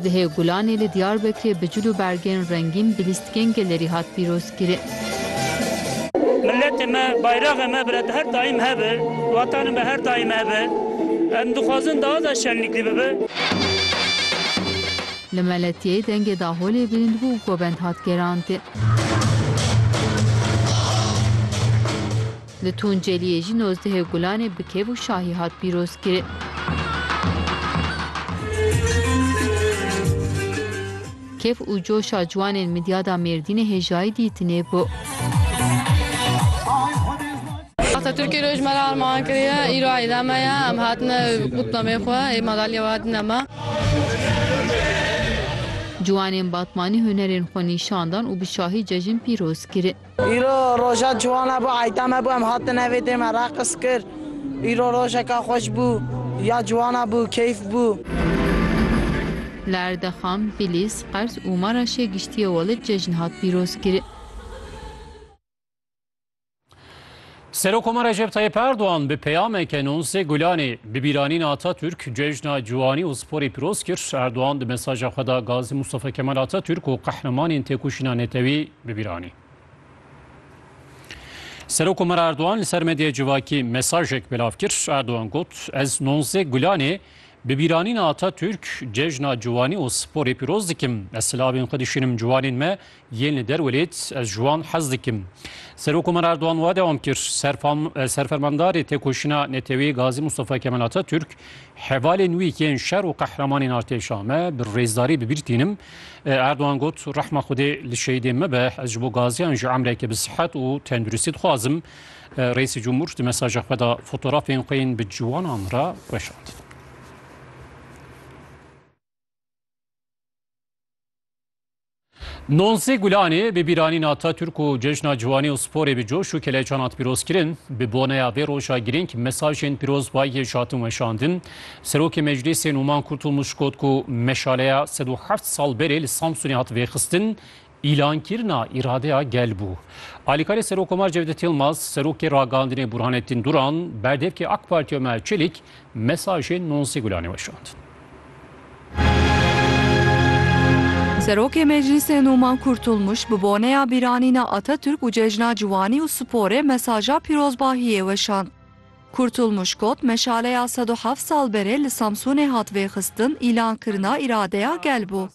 Dihê Gulanê li Diyarbekirê bi cil û bergên rengîn bi lîstikên gelerî hat pîrozkirin. Miletê me, bayraxê me bi her daîm hebe, watanê me her daîm hebe. Em dixwazin daha da şenlîklî bibe. Li Meletiyeyê dengê daholê bilind bû û govend hat gerandin. Li Tunceliyê jî nozdehê Gulanê bi kêf û şahî hat pîrozkirin. Kêf û coşa ciwanên midyada Mêrdînê hêjayî dîtinê bû. Atatürk'e roj me re armağan kiriye. Îro eyda me ye. Em hatine qutlamê xwe. Ê madalya hatine me. Ciwanên Batmanî hunerên xwe nîşan dan û bi şahî cejin pîroz kirin. Îro roja ciwan hebû, heytam hebû em hatin evê dê me reqis kir. Îro rojeka xweş bû, ya ciwan hebû, keyf bû. Li Erdexam, Bilîs, Qers û Maraşê giştî Ewelid cejn hat pîrozkirin. Serokkomar Recep Tayyip Erdogan bi peyameke Nonzê Gulanê bi bîranîna Atatürk cejna ciwanî û sporê pîroz kir. Erdogan di mesaja xwe de Gazî Mustafa Kemal Atatürk û qehremanên têkoşîna netewî bi bîr anî. Serokkomar Erdogan li ser medyaya civakî mesajek belav kir. Erdogan got, Ez Nonzê Gulanê bi bîranîna Atatürk cejna ciwanî û sporê pîroz dikim. Ez silavên xwe dişînim ciwanên me Yên li derwelêt ez ji wan hez dikim. Serokomar Erdogan wa dewam kir, Serfermandarê Têkoşîna Neteweyî Gazî Mustafa Kemal Atatürk, hevalên wî yên şer û qehremanên artêşa me bi rêzdarî bi bîr tînim. Erdogan got, Rehma Xwedê li şehîdên me be, ez ji bo gaziyan jî emreke bi sihet û tenduristî dixwazim. Reîsê Cumhur di mesaja xwe de fotorafên xwe yên bi ciwanan re weşand. Nonsê Gulanê bi bîranîna Atatürk û Cejna Ciwanî û Sporê bi coş û keleçan hat pîrozkirin. Bi boneya vê roja girîng mesajên pîrozbayiyê ji hatin weşandin. Serokê Meclîsê Nûman Kurtulmuş got ku meşaleya sed û heft sal berê li Samsunê hat vêxistin, îlankirina îradeya gel bû. Alîkarê Serokkomar Cevdet Yilmaz, Serokê Ragihandinê Burhanettin Duran, Berdevkê AK Partiya Omer Çelik mesajên Nonsê Gulanê weşandin. Serokê Meclîsê Nûman Kurtulmuş bi boneya bîranîna Atatürk û Cejna Ciwanî û Sporê mesaja pîrozbahiyê weşand. Kurtulmuş got, Meşaleya sed û heft sal berê li Samsûnê hat vêxistin îlankirina îradeya gel bû.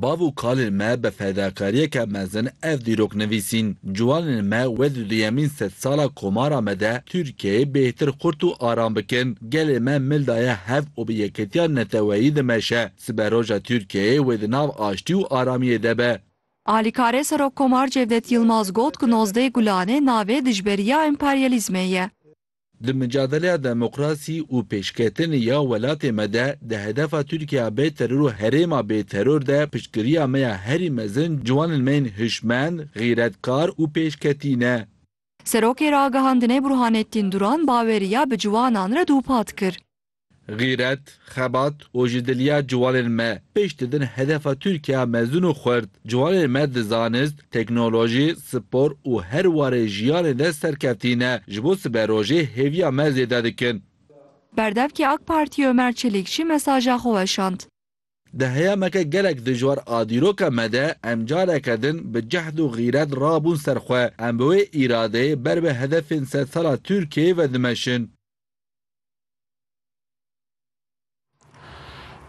Bav û kalên me bi fedakariyeke mezin ev dîrok nivîsîn. Ciwanên me wê di duyemîn sed sala komara me de Tirkiyeyê bêhtir xurt û aram bikin. Gelê me mil daye hev û bi yekitiya neteweyî dimeşe. Siberoja Tirkiyeyê wê di nav aştî û aramiyê de be. Alîkarê Serokkomar Cevdet Yilmaz got ku nozdeh Gulane navê dijberiya emperyalîzmê ye. Di micadeleya demokrasî û pêşketinê ya welatê me de, di hedefa Tirkiya bê teror û herêma bê teror de piştgiriya me ya herî mezin ciwanên me yên hişmend, xîretkar û pêşketî ne. Serokê Ragihandinê Burhanettin Duran baweriya bi ciwanan re dûpat kir. Xîret, xebat û ji diliya ciwanên me pêş didin hedefa Tirkiyeya mezin û xurt. Ciwanên me di zanist, teknolojî, spor û her warê jiyanê de serkevtî ne, ji bo siberojê hêviya me zêde dikin. Berdevkê AK Partiyê Ömer Çelik jî mesaja xwe weşand. Di heyameke gelek dijwar a dîroka me de em careke din bi cehd û xîret rabûn ser xwe. Em bi wê îradeyê ber bi hedefên sedsala Tirkiyeyê ve dimeşin.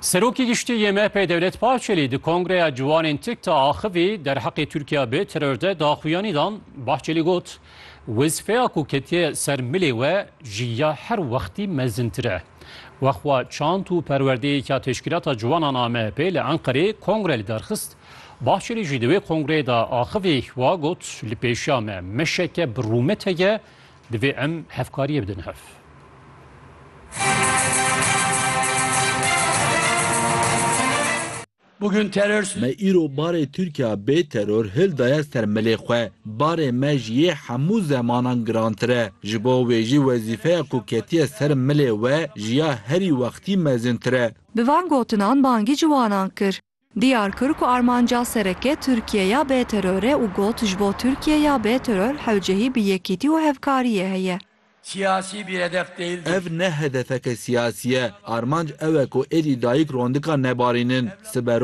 Serokê Giştî yê MHP'ê Dewlet Bahçelî di Kongreya Ciwanên TIKTA axivî derheqê Tirkiya bi teror de daxuyanî dan. Bahçelî got, Wezîfeya ku ketiye ser milê we ji ya her wextî mezintir e. Wexwa çant û perwerdeyêka Teşkîlata Ciwanan a MHP'ê li Enqerê kongre li dar xist. Bahçelî jî di wê kongreyê de axivî wa got, Li pêşiya me meşeke bi rûmet heye Divê em hevkariyê bidin hev. Bugün terör Me îro barê Tirkiya bê teror hil daye ser milê xwe. Barê me ji yê hemû zemanan girantir e. Ji bo wê jî wezîfeya ku ketiye ser milê we ji ya herî wextî mezintir e. Bi van gotinan bangî ciwanan kir. Diyar kir ku armanca sereke Tirkiye ya bê teror e û got ji bo Tirkiye ya bê teror hewcehî bi yekîtî û hevkariyê heye. Siyasî bir hedef değildir. Ev ne hedefeke siyasî ye. Armanc ew e ku êdî dayik rondika nebarînin. Sibe